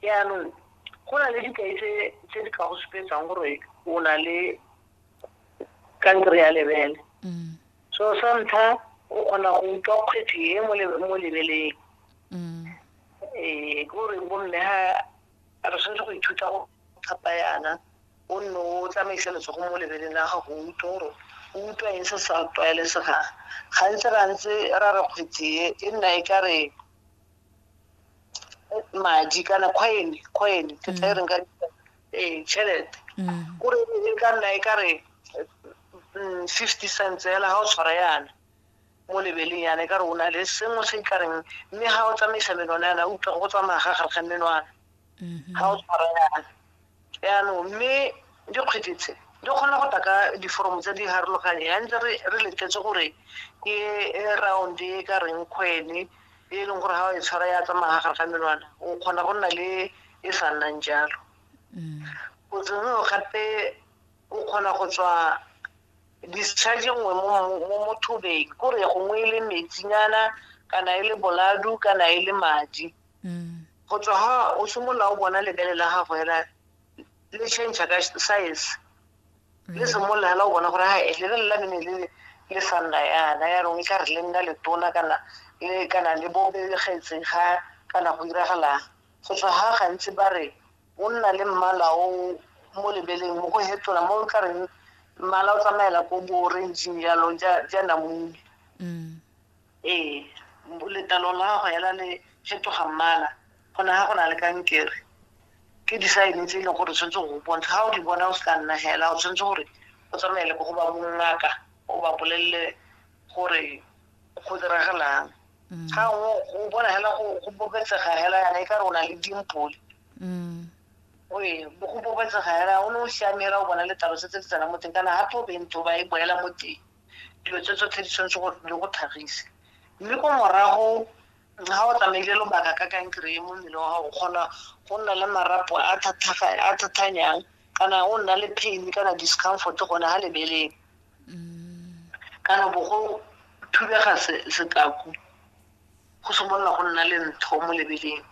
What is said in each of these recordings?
yaanong go na le dikai tse di ka go supetsang gore o na le kankere ya lebele mm. so sa ntlha o kgona go utlwa kgwethi e mo lebeleng mm. ee ke gore bomme ga re tshwanetse go ithuta go thapa yana o nne o tsamaisa letsogo mo lebeleng la gago o utlwe gore o utlwa eng se sa tlwaelesegang gantsi ra ntse ra re kgwethi e nna e ka re madi kana coin coin ke tla e reng ka ee tšhelete mm. kore e ka nna e ka re mm, fifty cents fela ga o tshwara yana mo lebeleng yana e ka re o na le sengwe se e ka reng mme ga o tsamaisa menwana yana utlwa go tsamaya ga gare ga menwana mm-hmm. ga o tshwara yana yaanong mme dikgwedi tse di kgona go taka diforomo tse di harologanye ya ntse re letetse gore ke round e ka reng kgwele e leng gore ga o e tshwara ya tsamaya gare ga menwana o kgona go nna le e sa nnang jalo mm. botsengeo gape o kgona go tswa discharge nngwe mo mothobeng kore gongwe e le metsinyana kana e le boladu kana e le madi Go tswa ha o simolola o bona lebele la gago hela le change ka size le simolola hela o bona gore ha lebele la mene le le sa nna yana ya rong e ka re le nna letona kana le kana le bobegetse ga kana go diragalang go tswa ha gantsi ba re o nna le mmala o mo lebeleng mo go hetola mo o tla reng mmala o tsamaela ko bo orangeng jalo ja namune Ee, letlalo la gago hela le fetoga mmala go ne ga go na le kankere ke disaene tse e leng gore tshwanetse go bontsha ga o di bona o se ka nna hela o tshwanetse gore o tsamaele ko go ba bongaka o ba bolelele gore go diragalang mm. ga o bona hela go bobetsega hela yana e ka re o na le dimpole mm. oe go bobetsega hela o ne o siame hela o bona letlalo setse le tsena mo teng kana gape o bentho ba e boela mo teng dilo tse tsotlhe di tshwanetse gore di go tlhagise mme ko morago ga o tsamaile lobaka ka kankere e mo mmele wa gago kgona go nna le marapo a thathanyang kana o nna le pain kana discomfort gone ga lebeleng mm. kana bo go thubega setaku go simolola go nna le ntho mo lebeleng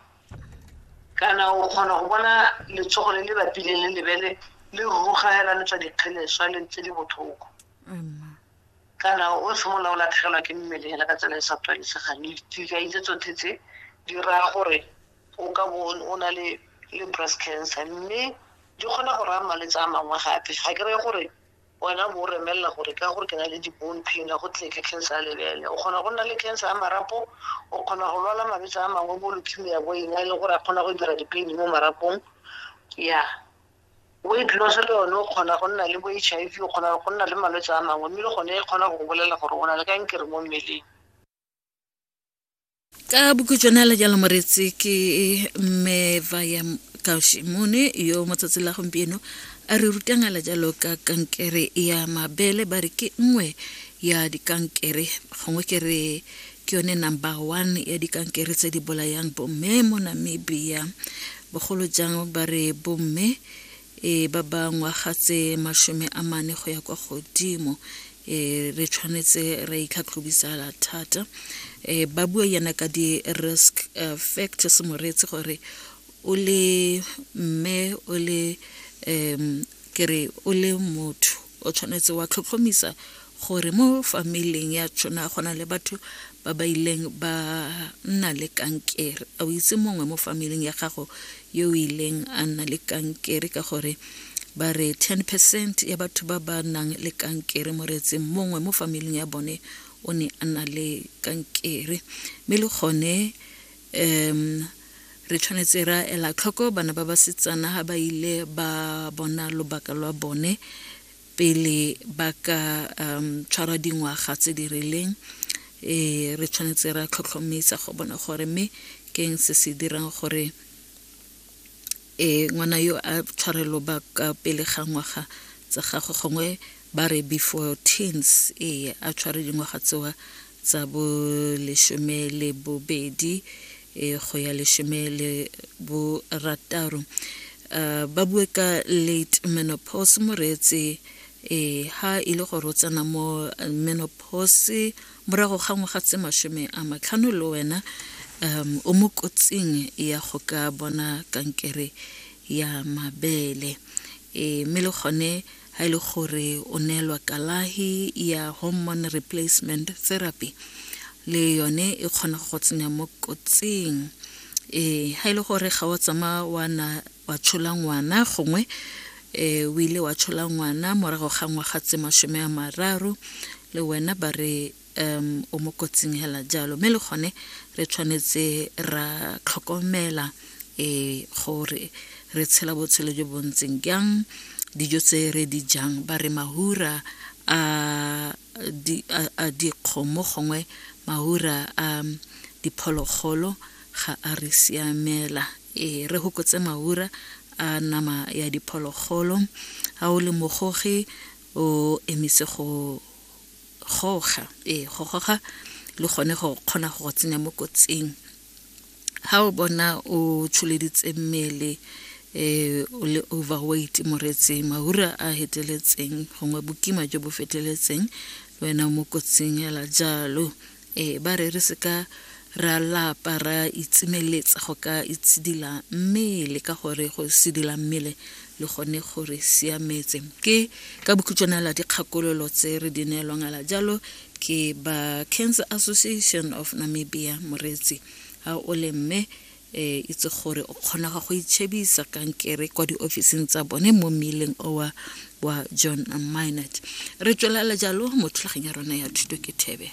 kana o kgona go bona letsogo le le bapileng le lebele le rugagela le tswa dikgeleswa le ntse di botlhoko Amen. kana o simolola o latlhegelwa ke mmele hela ka tsela e sa tlwalesegang dikai tse tsotlhe tse di raya gore o ka bo o na le le breast cancer mme di kgona go raya malwetse a mangwe gape ga ke reye gore wena bo o remelela gore ka gore ke na le di-bone pain a go tle ke cancer ya lebele o kgona go nna le cancer ya marapo o kgona go lwala malwetse a mangwe bo leukemia bo eng a e leng gore a kgona go dira di-pain mo marapong ya Weight loss le yone o kgona go nna le bo H_I_V, o kgona go nna le malwetse a mangwe, mme le gone e kgona go go bolelela gore o na le kankere mo mmeleng. ka bokhutšwana le jalo moreetsi ke mme vaya kaushimone yo mo tsatsi la gompieno a re rutang ala jalo ka kankere ya mabele ba re ke nngwe ya dikankere gongwe ke re Ke yone number one ya dikankere tse di bolayang bomme mo Namibia. Bogolo jang ba re bomme e ba ba ngwaga tse mashome a mane go ya kwa godimo e re tshwanetse re itlhatlhobisala thata e ba bua yana ka di-risk uh, factors moreetsi gore o le mme o le um Ke re o le motho o tshwanetse wa tlhotlhomisa gore mo famileng ya tshona go na le batho ba ba ileng ba nna le kankere a o itse mongwe mo famileng ya gago yo o ileng a nna le kankere ka gore ba re 10 percent ya batho ba ba nang le kankere mo reetseng mongwe mo famileng ya bone o ne a na le kankere mme le gone um re tshwanetse ra ela tlhoko bana ba basetsana ga ba ile ba bona lobaka lwa bone pele ba ka um tshwara dingwaga tse di rileng e re tshwanetse ra tlhotlhomisa go bona gore mme keng se se dirang gore Ee, ngwana yo a tshwarelo ba ka pele ga ngwaga tsa gagwe gongwe ba re before teens ee a tshware dingwaga tsewa tsa bo lesome le bobedi e go ya lesome le borataro uh, ba bue ka late menopause moreetse ee ha e le gore o tsena mo menopause Morago ga ngwaga tse masome a matlhano le wena um, o mo kotsing ya go ka bona kankere ya mabele e, mme le gone ga e le gore o neelwa kalahi ya hormone replacement therapy le yone e kgona go tsenya mo kotsing e, ga e le gore ga o tsamaya wa na wa tshola ngwana gongwe um o ile wa tshola ngwana morago ga ngwaga tse masome a mararo le wena ba re um o mo kotsing hela jalo mme le gone re tshwanetse ra tlhokomela um gore re tshela botshelo jo bo ntseng jang dijo tse re di jang ba re mahura a di, a, a dikgomo gongwe maura a diphologolo ga a re siamela. E, re hokotse maura a nama ya diphologolo. Ha o le mogogi o emise go goga, e, go goga le gone go kgona go go tsenya mo kotsing. Ha o bona o tsholeditse mmele eh, o le overweight moretseng mahura a heteletseng gongwe bokima jo bo feteletseng wena o mo kotsing ela jalo eh, ba re re seka ra lapa ra itsimeletsa go ka itshidila mmele ka gore go sidila mmele le gone gore siametse ke ka bokhutšwana la dikgakololo tse re di neelwang ala jalo ke ba cancer association of namibia moreetsi ga o le mme um itse gore o kgona ga go itšhebisa kankere kwa diofising tsa bone mo mmeleng owa wa john minot re tswelela jalo mo thulageng ya rona ya thuto ke thebe